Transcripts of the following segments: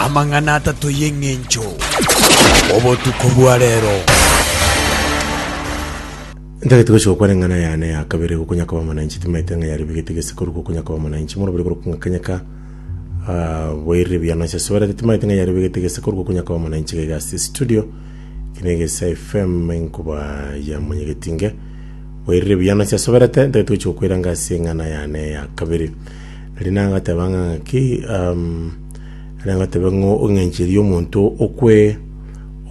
amang'ana atato y'eng'encho obotuko bwa reero. Ntagete gochia gokwana eng'ana yane ya kabere gokonya koba omonainchi, timaete ng'a yaribigete gese korwa gokonya koba omonainchi, morobere korwa kong'akanyeka ah, boirire biane ase soberete, timaete ng'a yaribigete gese korwa gokonya koba omonainchi gaiga ase studio, eki na egesa FM enkuba ya monyegetinge, boirire biane ase soberete, ntagete gochia gokoiranga ase eng'ana yane ya kabere. Rinda ngateba ng'a ng'aki, um, rinda ngatebe ng'o ong'encherie omonto okwe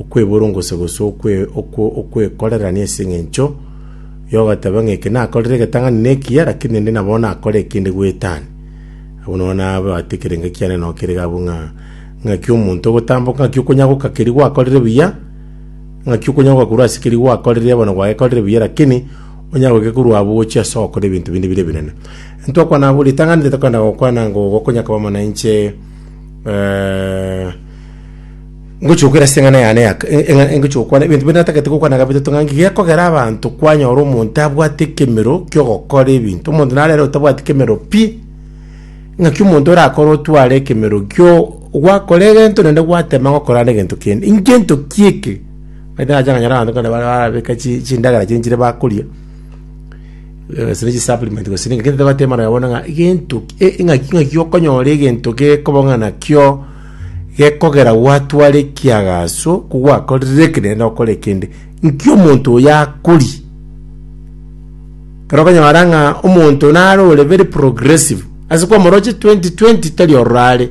okweborongose gose okwe okwe okwekorerania ase eng'encho yogateba ng'a eke nakorire egetang'ani na ekiya lakini ende nabo nakore ekende gwetani abwo nabo nabwate ekerengo kiane nabo kerega abwo ng'a ng'aki omonto ogotamboka ng'aki okonyagoka keria gwakorire buya ng'aki okonyagoka korwa ase keria gwakorire bono gwagekorire buya lakini onyagoke korwa abwo ogochia ase ogokora ebinto binde bire ebinene. Ntokwana abwo ritang'ani ritokwenda gokwana ngo gokonya koba mono inche eh, ngochi gokwera ase eng'ana yane ya eh, eng'a- eh, ngochi gokwana ebinto binde natagete gokwana gabito tong'angi gekogera abanto kwanyora omonto abwate ekemero kiogokora ebinto omonto narere otabwati kemero pi ng'aki omonto orakore otware ekemero kio gwakora egento naende gwatema ng'a okorande egento kende inche ntoki eke naende nacha nganyora abanto kare bare barabeka chi- chindagera chiaye nchire bakoria Gose ne chisupplement gose ne- gento tobwate amang'ana bono ng'a gento ki- e- e- ng'aki ng'aki okonyora egento gekobang'ana kio gekogera gwatwara ekiagaso ko gwakorire eke naende okore ekende, nki omonto oyo akoria? Ekero okonyora ng'a omonto naro ore very progressive, ase kwamoroche 2020 tari ororo are.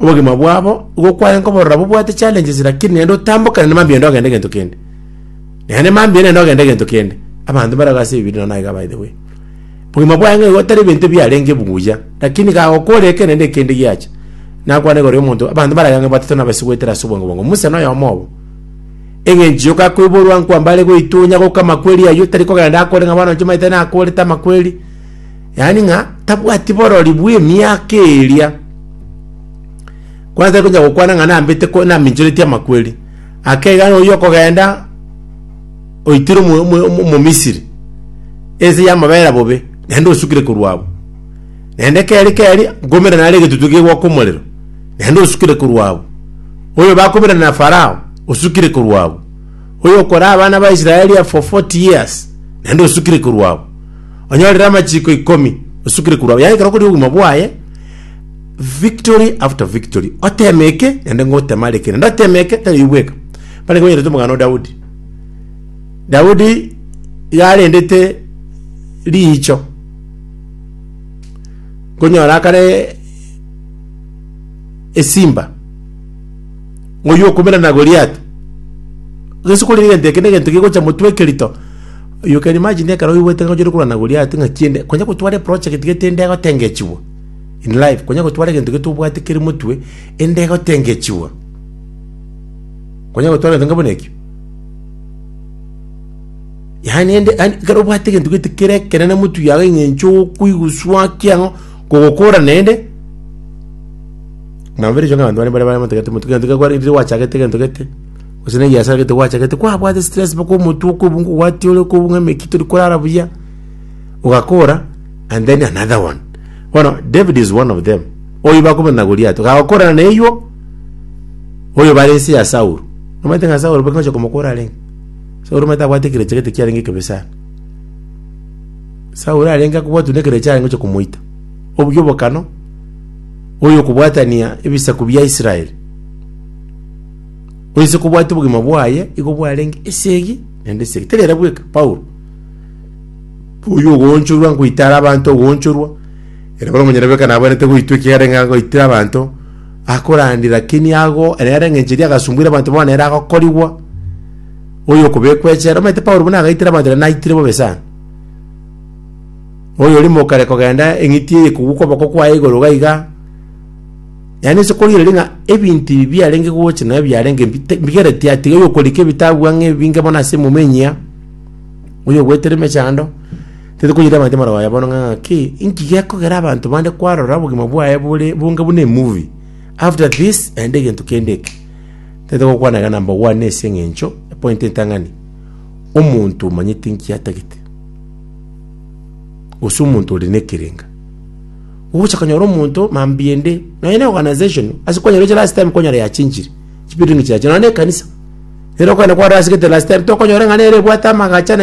Obogima bwabo nigo kwarenge oborora bobwate challenges lakini naende otambokane na mambia naende ogende egento kende. Naende mambia naende ogende egento kende. Abanto mbare iga ase ebibiria nonya naiga by the way. Obogima bwaye ng'a igo otari ebinto ebiarenge buya, lakini iga agokora eke naende ekende giacha. Nakwane igoro ya omonto, abanto mbare iga ng'a batato nabo ase goetera ase obwango bwango. Musa noyomo obo. Eng'encho yoka akoiborwa nkwambare goitunya goka amakweri ayio, tari kogenda akore ng'a bono inche omanyete nakorete amakweri. Yaani ng'a tabwati borori bw'emiaka eria, kwatari konya gokwana ng'a nambete ko- naminchoretie amakweri, ake iga nonya okogenda oitire omo- omo- omo- omomisiri ense y'amabera bobe, naende osukire korwa abwo. Naende keri keri, nkoumera nare egetutu kegwaka omorero, naende osukire korwa abwo. Oyo bakoumera na Farao, osukire korwa abwo. Oyo okoraa abana ba Israeli for 40 years, naende osukire korwa abwo. onyorere amachiko ikomi osukire korwa abwo. Yaye ekero okoria obogima bwaye, victory after victory, oteme eke, naende ngotema are eke, naende oteme eke, tari oyio bweka. Bare konyerete omogano o Daudi. Daudi iga arendete riicho, konyora akare esimba, oyio okomerana Goliath, gese kore egento eke na egento gegocha motwe ekerito. Oyoka Imagine ekero oigwete ng'a onchorwe korwa na Goliati ng'a tiende konya gotwara eprojegti iga tiende egotengechigwa in life, konya gotwara egento iga tobwate kere motwe ende egotengechigwa. Konya gotwara egento onga buna ekio. Yaani ende yaani ekero obwate egento gete kere ekenene motwe yago eng'encho okoiguswa ki ang'o kogokora naende nabo bire erio ng'a abanto baria mbare baramotebia ati motwe egento gekwarenge riria gwachagete egento gete. Gose negiasara gete gwachagete kwabwate stress mpaka omotwe okobunga ogwatiore okobunga emeki tori korara buya ogakora and then another one bono david is one of them oyo bakobona na goliato gagokorana na eywo oyo bare ense ya saul omanyete ng'a saul bakingocha komokora arenge saul omanyete abwate ekerecha gete kiarenge ekebe sana saul arenge akobwatwa na ekerecha arenge gocha komoita obuya obokano oyo okobwatania ebisaku bia israel Oyise kobwati obogima bwaye igo bwarenge esegi naende esegi. Tari era bweka Paulo. Oyo ogoonchorwa nkoitara abanto ogoonchorwa. Ere bono omonyene bweka nabwenerete goitwa ekiagera ng'a agoitire abanto akorandi lakini ago ere are engencho eria agasumbuire abanto bono ere agokorigwa oyo okobekwa echela. Omanyete Paulo buna agaitire abanto naende naitire bobe sana. Oyo orimo okare kogenda eng'iti eye ekogwa okoboko kwaye igoro iga iga Yaani ase korigereria ng'a ebinto ebi biarenge gocha nabo biarenge bite- bigereti atiga oyokorika ebitabu ang'e ebinge bono ase emomanyia, oyogoetera emechando, tari konyora abanto amaroba aye bono ng'a ng'aki, inki gekogera abanto bande kwarora obogima bwaye bore bonge buna emovie, after this naende egento kende eke. Tete gokwana iga number one ase eng'encho epointi entang'ani, omonto omanyete inki atagete, gose omonto ore na ekerenga. Ogocha konyora omonto mambia ende nonya ne organization ase kwanyora eche last time kwanyora yachinchire chibuilding chiaye nonya ne ekanisa. Nere okogenda kwarora ase gete last time tokonyora ng'a nere ebwate amagacha na